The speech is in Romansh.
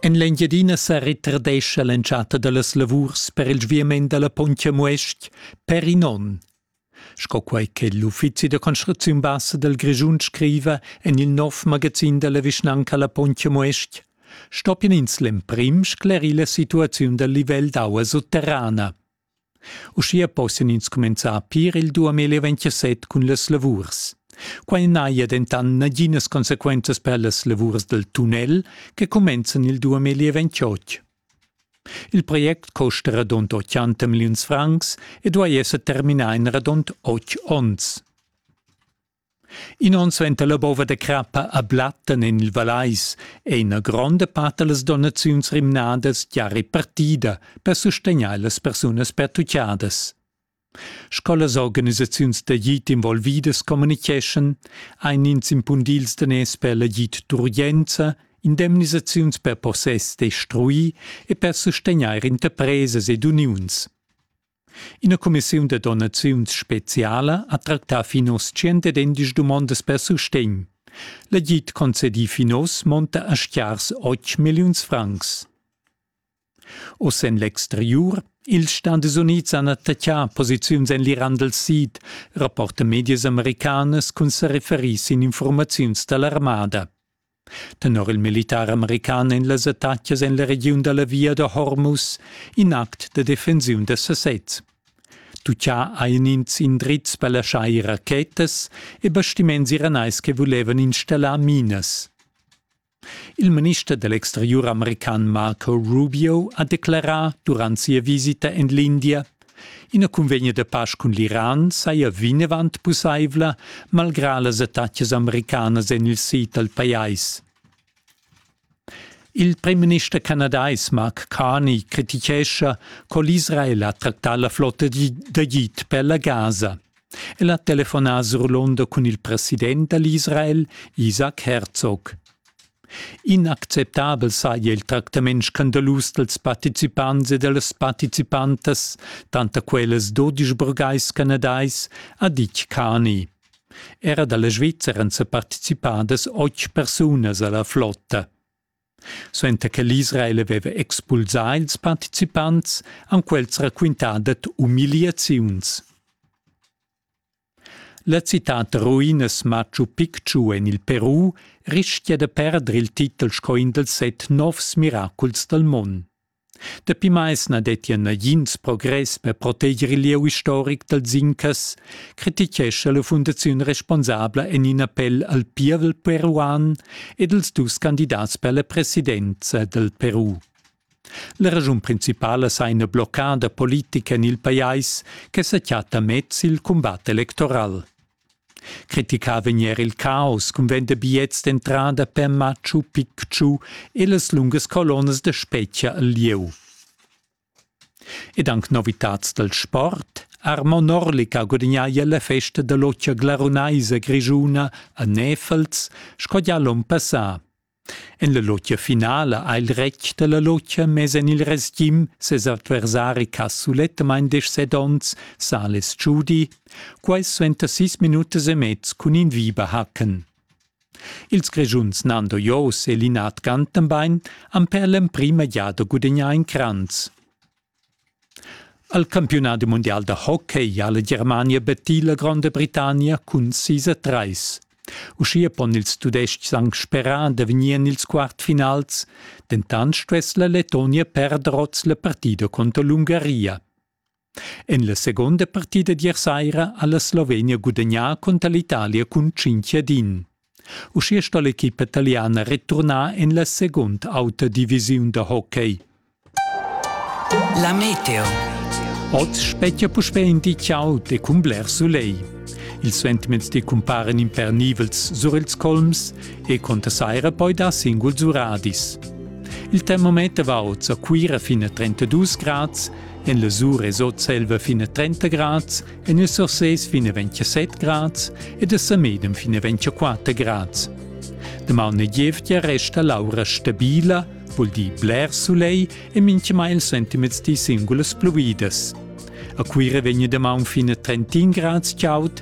En l'Engiadina sa retardescha l'entschatta da las lavurs per il sviament da la Pontja Muestg per in onn. Sco quai che l'uffizi da construcziun bassa dal Grischun scriva en il nov magazin da la vischnanca La Pontja Muestg, stoppien ins l'emprim sclerir la situaziun dal livel d'aua sutterrana. Uschia possian ins cumenzar a pir il 2027 cun las lavurs. Quai n'haja dentant naginas consequenzas per las lavurs dal tunnel che cumenzan il 2028. Il project costa radund 80 milliuns francs e duai esser terminà en radund otg onns. In onn suenter la bova da crappa a Blatten en il Vallais è ina gronda part da las donaziuns rimnadas gia repartida per sustegnair las persunas pertutgadas. Sco las organisaziuns d'agid involvidas communitgeschan, ein ins impundì ils daners per l'agid d'urgenza, indemnisaziuns per possess destruì e per sustegnair interpresas ed uniuns. Ina cumissiun da donaziuns speziala ha tractà fin oz tschient dumondas per sustegn. L'agid concedì fin oz monta a schiars otg milliuns francs. Oz en l'exteriur ils Stadis Unids han attaccà posiziuns en l'Iran dal Sid, rapporta medias americanas cun sa referir sin informaziuns da l'armada. Tenor il militar american en las attacas en la regiun da la via da Hormuz, in act da defensiun da sasez. Tuccià hajan ins indrizs per laschar ir rachetas e bastiments iranais che vulevan installar minas. Il minister dell'exterior american Marco Rubio ha declarà durant sia visita en l'India Ina cunvegna da pasch cun l'Iran saja vinavant pussaivla, malgrà las attacas americanas en il sid dal pajais. Il premierminister canadais Mark Carney crititgescha co l'Israel ha tractà la flotta d'agid per la Gaza. El ha telefonà surlonder cun il president da l'Israel, Isaac Herzog. Inacceptabel saja il tractament scandalus dals participants e da las participantas, tanter quellas dodisch burgais canadais, ha ditg Cani. Era da la Svizzera han sa participadas otg persunas a la flotta. Suenter che l'Israel aveva expulsà ils participants, han quels raquintà dad umiliaziuns. La citad ruinas Machu Picchu en il Peru rischia da perder il titel sco in dals set novs miraculs dal mund. Dapi mais na dettia nagins progress per proteger il lieu istoric dal Zinchas, crititgescha la fundaziun responsabla en in appell al pievel peruan ed als dus candidats per la presidenza dal Peru. La raschun principala sa ina bloccada politica en il pajais che sa chatta mez il cumbat electoral. Criticà vegn er il caos cun vender bigliets d'entrada per Machu Picchu e las lungas colonnas da spetga al lieu. Ed anc novitads dal sport. Armo Norlica gudagnaglia la festa da l'occia glarunaisa grischuna a Nefels sco gia l'onn passà. En la lotgia finala ha il retg dalla lotgia mess en il resgim ses adversari ch'ha sulettamain deschset onns, Sales Giudi, quai suenter sis minutas e mez cun in Viberhacken. Ils Grischuns Nando Jos e Linard Gantenbein han per l'emprima giada gudagnà in cranz. Al campiunadi mundial da hockey ha la Germania battì la Gronda Britannia cun sis a trais. Uschia pon ils Tudestgs anc sperar da vegnir en ils quartfinals, dentant stuess la Lettonia perder oz la partida conter l'Ungaria. En la seconda partida d'ier saira ha la Slovenia gudagnà conter l'Italia cun 5 ad 1. Uschia sto l'equipa taliana returnar en la segunda auta divisiun da hockey. La meteo. Oz spettia puspè in di ciao de cun bler soleil. Ils sentiments cumparen impernivels sur ils colms e conta saira poi da singuls uradis. Il termometer va oz a Cuira fin a 32 grads, en la Sur es oz selva fin a 30 grads En e Sursés fin 27 grads ed a Samedem fin 24 grads. Damaun e gievgia resta l'aura stabila, vul dir bler sulei e minchemai il sentiments di singulas pluvidas. A Cuira vegna damaun fin a 31 grads chaud,